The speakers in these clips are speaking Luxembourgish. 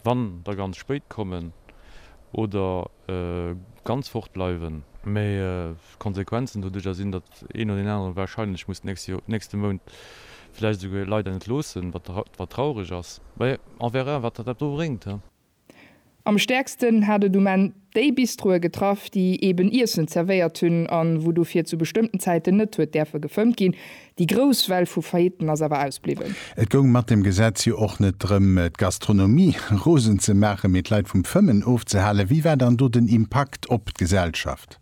Wann der ganz spéit kommen oder ganz fort bleiwen. Mee d'Konsequenzen doduerjer sinn, datt een oder deen anere warscheinlech muss d'nächste Mount vläicht esouguer ee Leit entloossen, wat traureg ass. Mee on verra wat dat do bréngt. Am stäerksten hat et um Enn Déi Bistroe getraff, déi eben Iessen zerwéiert hunn an wou dofir zu bestëmmten Zäiten net huet däerfe gefëmmt ginn. Déi grouss Well vu Faillitten ass awer ausbliwwen. Et goung mat dem Gesetz jo och net drëm, d'Gastronomie rosen ze maachen, mee d'Leit vum Fëmmen ofzehalen. Wéi war dann do den Impakt op d'Gesellschaft?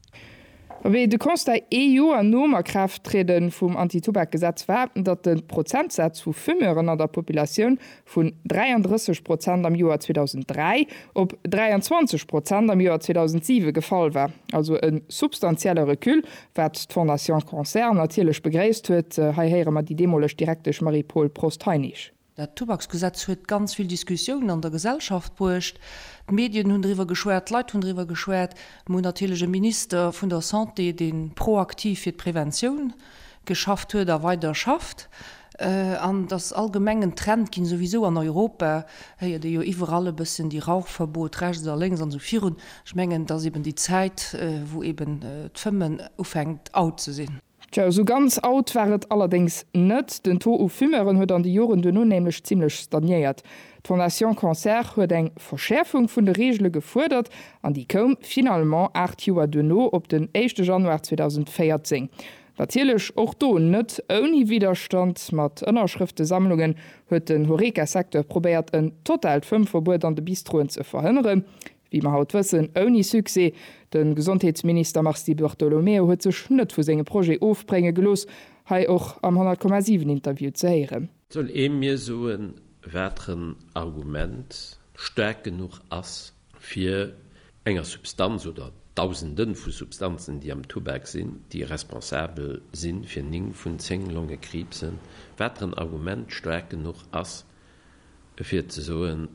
Wéi de Constat ee Joer nom Akraafttriede vum Anti-Tubak-Gesetz war, datt de Prozentsaz vu Fumeuren an der Populatioun vun 33 Prozent am Joer 2003 op 23 Prozent am Joer 2007 gefall war, also e substantielle Recul, wat d'Fondation Cancer natierlech begréisst huet, hei héiere mer déi deemoleg Direktesch Marie-Paule Prost-Heinisch. Dat Tubaksgesetz huet ganz vill Diskussiounen an der Gesellschaft bruecht. D'Medien hunn driwwer geschwat, d'Leit hunn driwwer geschwat. Mir hunn natierlech e Minister vun der Santé, dee proaktiv fir d'Preventioun geschafft huet a weider schafft. An et ass allgemeng en Trend ginn, souwisou an Europa héiert ee jo iwwerall e bëssen déi Rauchverbot rechts a lénks an esou virun. Ech mengen, et ass eben déi Zäit, wou eben d'Fëmmen ufänkt out ze sinn. Tjo, esou ganz out war et allerdéngs net. Den Taux u Fumeuren huet an de Joren duerno nämlech zimmlech stagnéiert. D'Fondation Cancer huet eng Verschäerfung vun de Reegele gefuerdert an déi koum finalement aacht Joer duerno op den éischte Januar 2014. Natierlech och do net ouni Widderstand. Mat Ënnerschrëftesammlungen huet den Horeca-Secteur probéiert en totaalt Fëmmverbuet an de Bistroen ze verhënneren. Wéi mer haut wëssen, ouni Succès. De Gesondheetsminister Mars Di Bartolomeo huet sech net vu senge Projet ofbrénge gelooss, hei och am 100,7 Interview ze héieren. Soll ee mir soen, wateren Argument staark genuch ass, fir enger Substanz oder Dausende vu Substanzen, déi am Tubak sinn, déi responsabel si fir 9 vun 10 Longekriibsen, wateren Argument staark genuch ass, fir ze soen,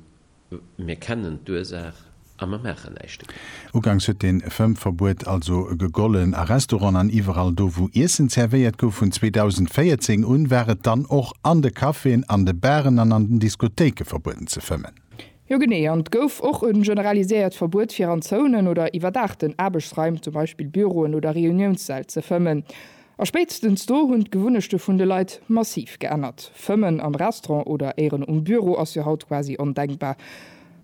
Mir kennen d'Ursaach a mer maachen näischt dogéint. Ugangs huet den Fëmmverbuet also gegollen a Restauranten an iwwerall do wou Iessen zervéiert gouf. Vun 2014 un war et dann och an de Caféen, an de Baren an an den Diskothéiken verbueden ze fëmmen. Jo genee, an et gouf och en generaliséiert Verbuet fir an Zounen oder iwwerdaachten Aarbechtsraim, zum Beispill Büroen oder Reuniounssäll, ze fëmmen. A spéitstens do hunn d'Gewunnechte vun de Leit massiv geännert. Fëmmen am Restaurant oder éieren um Büro ass jo haut quasi ondenkbar.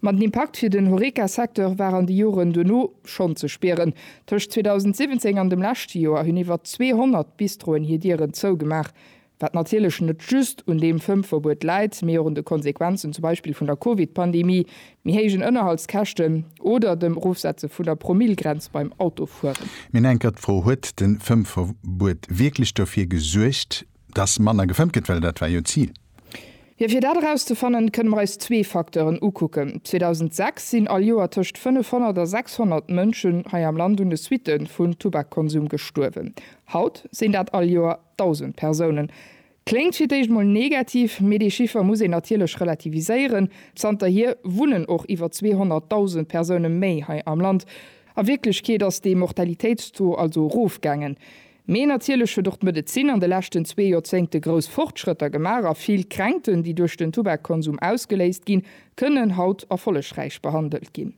Ma den Impakt fir den Horeca-Secteur war an de Joren duerno schonn ze spieren. Tëscht 2017 an dem leschte Joer hunn iwwer 200 Bistroen hir Dieren zougemaach. Wat natierlech net just un deem Fëmmverbuet läit, mee och un de Konsequenzen zum Beispill vun der Covid-Pandemie, méi héijen Ënnerhaltskäschten oder dem Erofsetze vun der Promillegrenz beim Autofueren. Mir hunn eng Kéier d'Fro, Huet de Fëmmverbuet wierklech dofir gesuergt, dass manner gefëmmt gëtt? Well dat war jo d'Zil. Jo, fir dat erauszefannen, kënne mer eis zwee Facteuren ukucken. 2006 sinn all Joer tëscht 500 a 600 Mënschen hei am Land un de Suitte vun Tubakkonsum gestuerwen. Haut sinn dat all Joer 1.000 Persounen. Kléngt fir d'éischt mol negativ, mee dee Chiffer muss een natierlech relativiséieren. Zanterhier wunnen och iwwer 200.000 Persoune méi hei am Land. A Wierklechkeet ass dee Mortalitéitstaux also erofgaangen. Mee natierlech huet och d'Medezin an de leschten zwee Joerzéngte grouss Fortschrëtter gemaach a vill Kränkten, déi duerch den Tubakkonsum ausgeléist ginn, kënnen haut erfollegräich behandelt ginn.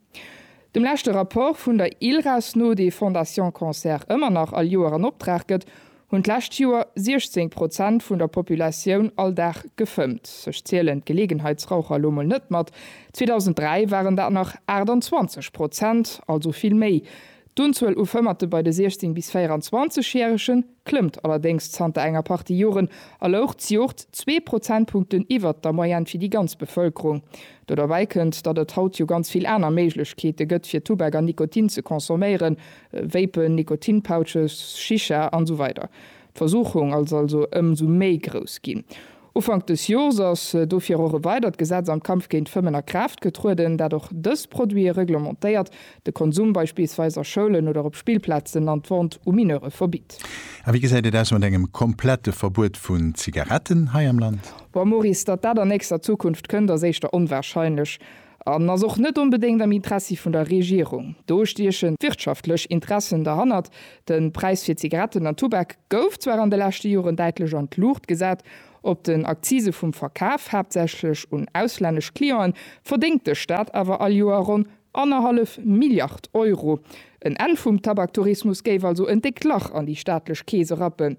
Dem leschte Rapport vun der ILRAS no, dee Fondation Cancer ëmmer nach all Joer an Optrag gëtt, Hunn d'lescht Joer 16 Prozent vun der Populatioun all Dag gefëmmt. Ech zielen d'Geleegenheitsraucher elo mol net mat. 2003 waren dat nach 28 Prozent, also vill méi. D'Unzuel u Fëmmerte bei de 16 bis 24 Järege klëmmt allerdéngs zanter enger Partie Joren a louch d'Joert zwee Prozentpunkten iwwert der Moyenne fir déi ganz Bevëlkerung. Do derbäi kënnt, datt et haut jo ganz vill aner Méiglechkeete gëtt fir Tubak an Nikotin ze consomméieren. Vapen, Nikotinpouches, Shisha an esou weider D'Versuchung ass also ëm sou méi grouss ginn. Ufank dës Jors ass dofir och e weidert Gesetz am Kampf géint d'Fëmmen a Kraaft getrueden, dat och dës Produite reglementéiert, de Konsum beispillsweis a Schoulen oder op Spillplazen an d'Vente u Mineure verbitt. A wéi gesäit et aus mat engem komplette Verbuet vun Zigaretten hei am Land? Bon, Maurice, datt dat an nächster Zukunft kënnt, ass éischter onwahrscheinlech. an ass och net onbedéngt am Interessi vun der Regierung. Do stiechen d'wirtschaftlech Interessen derhannert. De Präis fir Zigaretten an Tubak gouf zwar an de leschte Joren däitlech an d'Luucht gesat. Op den Akzise vum Verkaf, haaptsächlech un auslännesch Clienten, verdéngt de Staat awer all Joer ronn annerhallef Milliard Euro. En Enn vum Tabaktourismus géif also en déckt Lach an déi staatlech Keese rappen.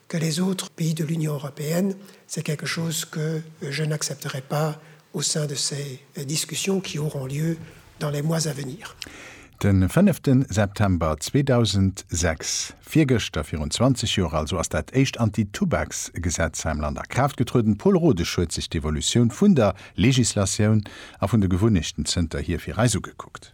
Que les autres pays de l'Union européenne, c'est quelque chose que je n'accepterai pas au sein de ces discussions qui auront lieu dans les mois à venir. De fënnefte September 2006, virgëschter, virun 20 Joer also, ass dat éischt Anti-Tubaks-Gesetz hei am Land a Kraaft getrueden. Paul Rodesch huet sech d'Evolutioun vun der Legislatioun a vun de Gewunnechten zënterhier fir eis ugekuckt.